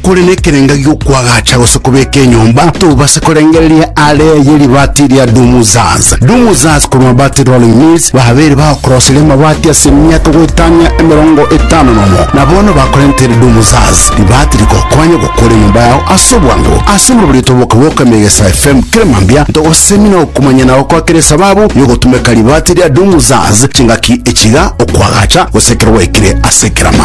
Kore nekerenga gi'okwagacha gose kobeka enyomba, tobase korengereria aare ye ribaati ria Dumuzaz. Dumuzaz korwa Mabaati Rolling Mills babeire bagokoroseria amabaati ase emiaka goetania emerongo etano nomo, na bono bakorentere Dumuzaz ribaati rigokonya gokora enyomba yao ase obwango. Ase omobori otoboke bw'oka Emegesa FM kera mambia ntogosemia na okomanyana gokwa kera esababu y'ogotumeka ribaati ria Dumuzaz chingaki echiga, okwagacha, gose ekero gwaikire ase ekerama.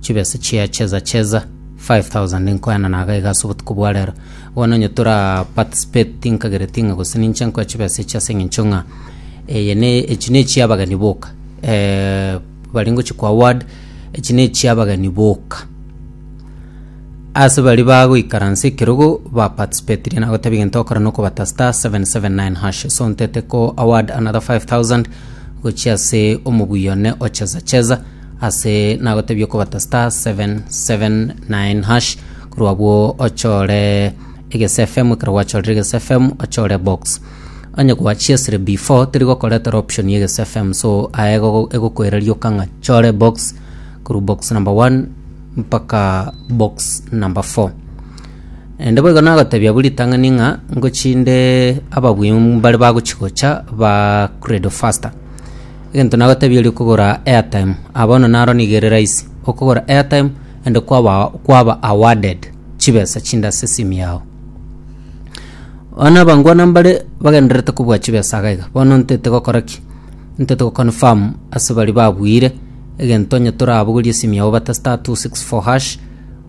Chibesa chia cheza cheza 5000 nkoena na agaiga ase obotuko bwa rero. Bono onye tora participate tinkagereti ng'a gose ninche nkoe chibesa echi ase eng'encho ng'a eye ne echi ne chia abageni boka. Eh, bari ngochi kwa award echi ne chia abageni boka. Ase bari bagoikaransa ekerogo ba participatirie nagoteba egento okora nokobata star 779 hash so ntete ko award another 5000 gochia ase omoguyo one ocheza cheza Ase nagotebia okobata star seven seven nine hash korwa abwo ochore egese FM ekero gwachorire egese FM ochore box onye gwachiesire before teri gokoretera option ya egese FM so aye ego- egokoereria oka ng'a chore box korwa box number one mpaka box number four Ende boigo nagotebia abwo ritang'ani ng'a ngochinde ababui mbare bagochi gocha ba credo faster Egento nagotebia erio kogora airtime ah bono naro nigo ere rahisi okogora airtime ande kwaba kwaba awarded chibesa chinde ase esim yao bono abangwana mbare bagendererete kobua chibesa iga iga bono ntete gokora ki ntete go confirm ase bari babuire egento onye torabogorie esim yao obate star two six four hash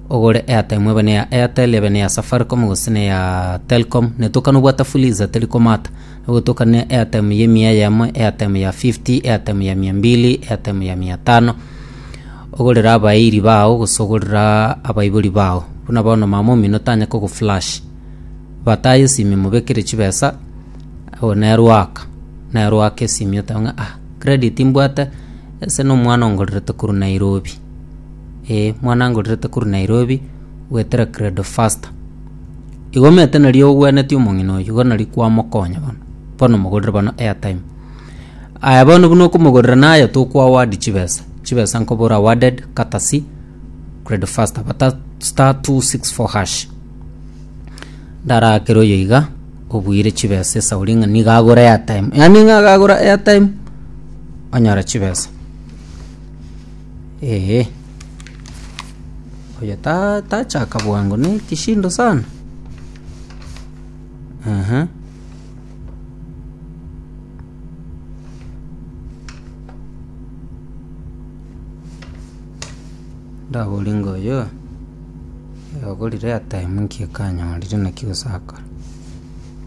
ogore airtime ebe na eya airtel ebe na eya safaricom gose na eya telcom netokana obwate fuliza teri komata. Ogotokana airtime ya emia eyemo, airtime ya 50, airtime ya mia mbili, airtime ya mia tano, ogorere abairi bao gose ogorere abaibori bao. Buna bono mama omino tanya kogoflash, bataye esimi mobekere chibesa, oye nere oaka, nere oaka esimi oteba ng'a ah credit mbwate ase na omwana ongorerete korwa Nairobi, eh omwana angorerete korwa Nairobi goetera credo faster. Igomete nari ogwenetie omong'ina oyio igo nari kwamokonya bono. Bono mogorere bono airtime. Aya bono buna okomogorera naye tokwa award chibesa. Chibesa nkoboro awarded courtesy Credo Faster bata star 264 hash. Ndarakere oyo iga obuire chibesa esauri ng'a niga agore airtime. Yaani ng'a agagora airtime onyora chibesa. Ee, oyo ta- tachaka bwango ne kishindo sana Aha. ndabori ng'a oyo agorire atime nki akanyorire naki gosakora